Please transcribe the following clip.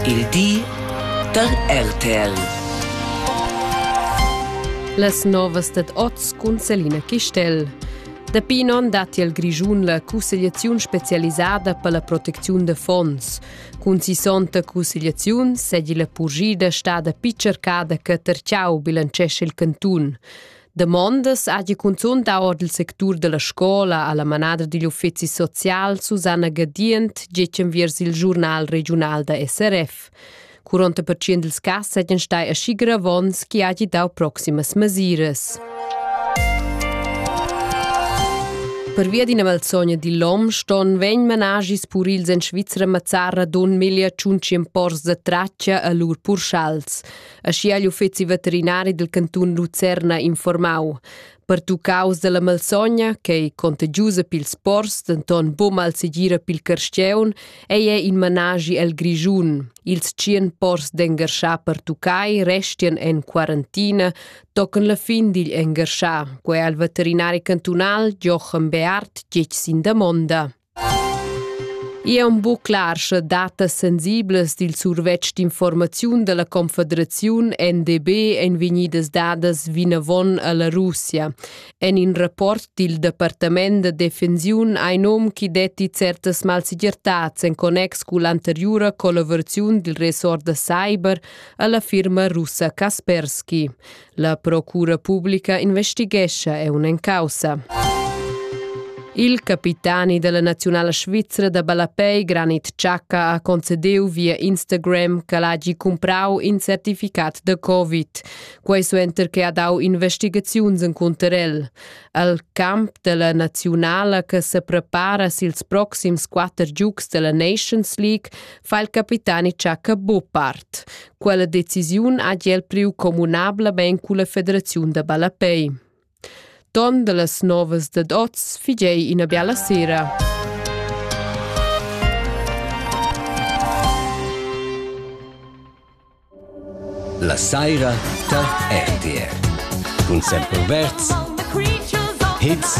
Il di da RTL. Las novas dad oz cun Selina Chistel. Dapi in onn datti al Grischun la cussegliaziun spezialisada per la protecziun da fonds. Cun sissonta cussegliaziun sedi la purgida stada picercada che Terciau bilancesce il cantun. Damondas hagi cunzun dau ord il sectur dalla scola alla manada digl uffeci social Susanna Gadient getg enviers il giurnal regiunal da SRF. 40% dils cass seigien stai aschi gravons che hagi dau proximas mesiras. Pervia d'ina malsogna di lom ston vegn managis purils en Svizzera mazzarra don meglio tschunci pors da traccia a lur purschals. aschia igl uffeci veterinari dil cantun Lucerna informau. Pertuccaus dalla malsogna, ch'ei contagiusa pils pors, denton buca malsegira pil carstgeun, ei è in managi el Grischun. Ils tschien pors d'engarschar pertuccai restien en quarantina, tocan la fin digl engarschar, quei al veterinari cantunal Jochen Beart tgietsch sin damonda. I è buc clar, sche datas sensiblas dil survetsch d'informaziun dalla Confederaziun NDB ein vegnidas dadas vinavon alla Russia. En in rapport dil Departament da defensiun ein um chi detti certas malsegirtats en connex cull'anteriura collaboraziun dil ressort da cyber alla firma russa Kaspersky. La procura publica investighescha è un causa. Il capitani della nazionala svizzera da ballapei Granit Xhaka ha concedeu via Instagram che l'hagi comprau in certificat da Covid. Quei suenter che ha dau investigaziuns in Cunterel. Al camp della nazionala che se prepara sils proxims quatter giugs della Nations League fa il capitani Xhaka buo part. Quella decisiun ha el priu communablamain culla federaziun da ballapei. Ton dallas novas dad oz figei ina biala sera. La saira tar RTR. Cun Semper Verz. Hits.